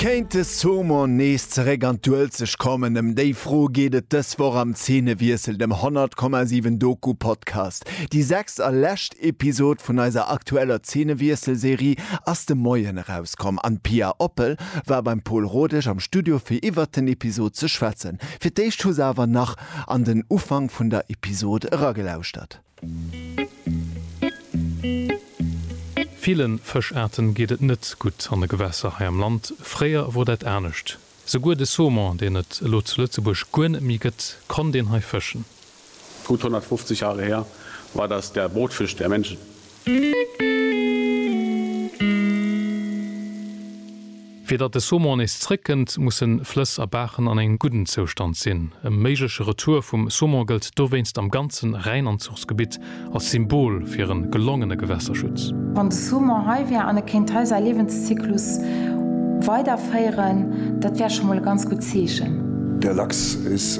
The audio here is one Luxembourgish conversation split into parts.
Kéint de Saumon nees zeréck an d'Uelzecht kommen? Ëm déi Fro geet et dës Woch am Zeenewiessel, dem 100,7 Doku-Podcast. Déi sechst a lescht Episod vun eiser aktueller Zeenewiessel-Serie ass de Moien erauskomm an d'Pia Oppel war beim Pol Rodesch am Studio fir iwwert den Episod ze schwätzen. Fir d'éischt hu se awer nach an den Ufank vun der Episod eragelauschtert. Villen Fëschaarten geet et net gutt an de Gewässer hei am Land. Fréier wor dat anescht. Souguer de Saumon, deen et elo zu Lëtzebuerg guer net méi gëtt, konnt een hei fëschen. Gutt 150 Jahre her war das der Brotfisch der Menschen. Fir datt de Saumon nees zréckkënnt, musse Flëss a Baachen an engem gudden Zoustand sinn. E méigleche Retour vum Saumon gëllt dowéinst am ganzen Rhäinanzuchsgebitt als Symbol fir e gelongene Gewässerschutz. Wann de Saumon hei wär an e kéint hei säi Liewenszyklus weiderféieren, dat wär scho mol e ganz gutt Zeechen. Der Lachs is.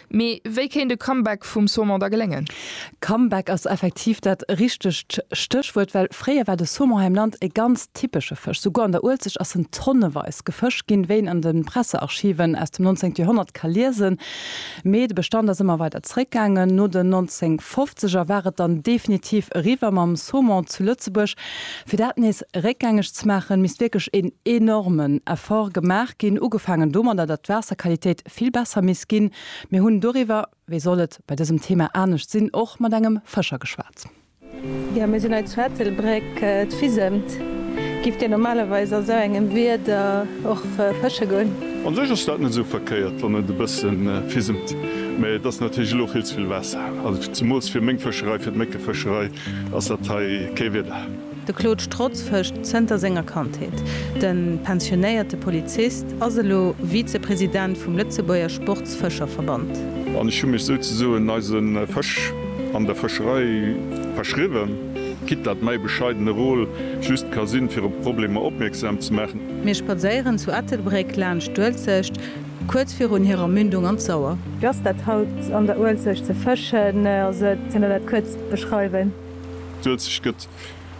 Mee wéi kéint e Comeback vum Saumon da geléngen? Comeback ass effektiv dat richtegt Stéchwuert, well fréier war de Saumon hei am Land e ganz typesche Fësch. Souguer an der Uelzecht ass en tonneweis gefëscht ginn, wéi een an de Pressearchiven aus dem 19. Joerhonnert ka liesen. Mee de Bestand ass ëmmer weider zeréckgaangen. No den 1950 er war et dann definitiv eriwwer mam Saumon zu Lëtzebuerg. Fir dat nees réckgängeg ze maachen, misst wierklech een enormen Effort gemaach ginn, ugefaangen domadder, datt d'Waasserqualitéit, vill besser misst ginn. Mir hunn doriwwer, wéi soll et bei dësem Thema anescht sinn, och mat engem Fëscher geschwat. Jo, mir sinn hei zu Ettelbréck, et fisemt. Gift Dir normalerweis a sou engem Wieder och fësche goen? An sech ass dat net esou verkéiert, wann et e bësse fisemt, mä et ass natierlech elo vill ze vill Waasser. Also zemools fir meng Fëscherei, fir d'Méckefëscherei ass dat hei kee Wieder. De Claude Strotz fëscht zënter senger Kandheet. De pensionéierte Polizist ass elo Vizepresident vum Lëtzebuerger Sportsfëscherverband. An ech hu mech souzesoen eise Fësch an der Fëscherei verschriwwen, quitte dat mäi bescheidene Rôle just ka sinn, fir op Problemer opmierksam ze maachen. Mir spadséieren zu Ettelbréck laanscht d'Uelzecht, kuerz virun hirer Mündung an d'Sauer. Wéi ass dat haut an der Uelzecht ze fëschen? Also, kënnt Der dat kuerz beschreiwen? D'Uelzecht gëtt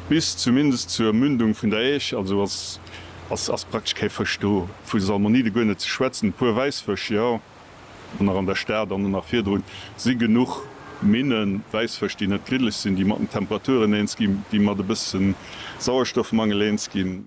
bis zumindest zur Mündung vun der Äisch, also ass praktesch kee Fësch do, vu Salmonide guer net ze schwätzen. E puer Wäissfësch, jo, an nach an der Stad an och nach virdrun si genuch Minnen, Wäissfësch, déi net gliddeg sinn, déi mat den Temperaturen eens ginn, déi mat e bësse Sauerstoffmangel eens ginn.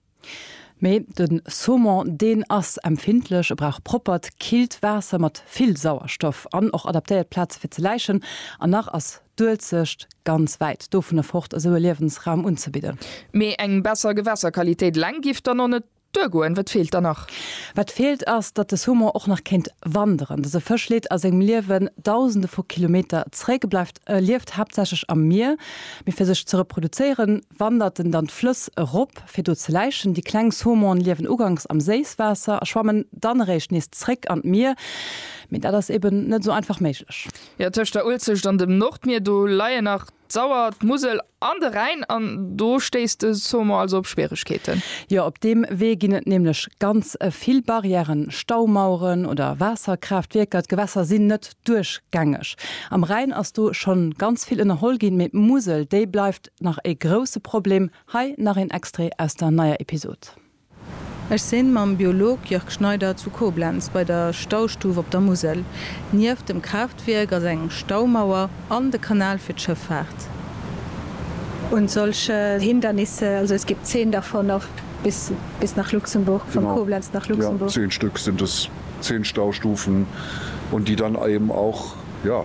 Mee de Saumon, deen ass empfindlech, e brauch proppert, killt Waasser mat vill Sauerstoff an och adaptéiert Plaze fir ze läichen. An nach ass d'Uelzecht ganz wäit dovunner fort, esou e Liewensraum unzebidden. Mee eng besser Gewässerqualitéit eleng giff dann och net duergoen. Wat feelt dann nach? Wat feelt ass, datt de Saumon och nach kéint wanderen. Dëse Fësch leet a sengem Liewen dausende vu Kilometer zréck, bleift E lieft haaptsächlech am Mier, mee fir sech ze reproduzéieren, wandert en dann d'Flëss erop, fir do ze läichen. Déi kleng Saumone liewen uganks am Séisswaasser a schwammen dann eréischt nees zréck an d'Mier, mee dat ass eben net esou einfach méiglech. Jo, tëscht der Uelzecht an dem Nordmier, do leien nach d'Sauer, d'Musel An de Rhäin, an do stéisst de Sommer also op Schwieregkeeten? Jo, op deem Wee ginn et nämlech ganz vill Barrièren, Staumaueren oder Waasserkraaftwierker. D'Gewässer sinn net duerchgängeg. Am Rhäin ass do schonn ganz vill ënnerholl ginn, mee d'Musel, déi bleift nach e grousse Problem. Hei nach een Extrait aus der neier Episode. Ech sinn mam Biolog Jörg Schneider zu Koblenz bei der Staustuf op der Musel. Nieft dem Kraaftwierk ass eng Staumauer an de Kanal fir d'Schëffaart. Und solche Hindernisse, also es gibt zehn davon auf bis bis nach Luxemburg, von Koblenz nach Luxemburg. Genau, ja, zehn Stück sind es, zehn Staustufen und die dann eben auch, ja.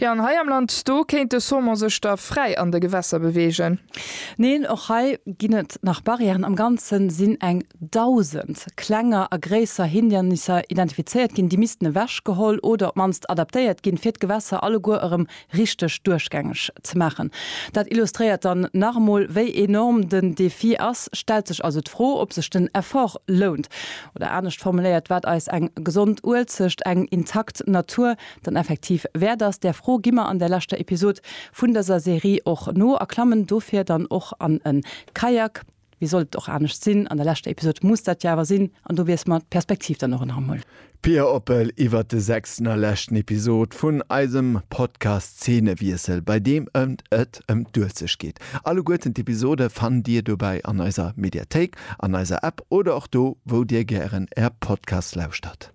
Jo, an hei am Land, do kéint de Saumon sech da fräi an de Gewässer beweegen. Neen, och hei ginn et nach Barrièren. Am Ganze sinn eng Dausend klenger a gréisser Hindernisser identifizéiert ginn. Déi missten ewechgeholl oder op d'mannst adaptéiert ginn, fir d'Gewässer alleguer erëm richteg duerchgängeg ze maachen. Dat illustréiert dann nach emol, wéi enorm den Defi ass. Stellt sech also d'Fro, ob sech den Effort lount. Oder anescht formuléiert, wat eis eng gesond Uelzecht, eng intakt Natur dann effektiv wäert ass? Där Fro gi mer an der leschter Episod vun dëser Serie och no a klammen dofir dann och an e Kayak. Wéi sollt et och anescht sinn, an der leschter Episod muss dat jo awer sinn an do wiessle mer d'Perspektiv dann och en Hammel. Pia Oppel iwwert de sechsten a leschten Episod vun eisem Podcast Zeenewiessel, bei deem ëmt et. et ëm d'Uelzecht geet. Alleguerten d'Episode fannt Dir dobäi an eiser Mediathéik, an eiser App oder och do, wou Dir gären Är Podcast lauschtert.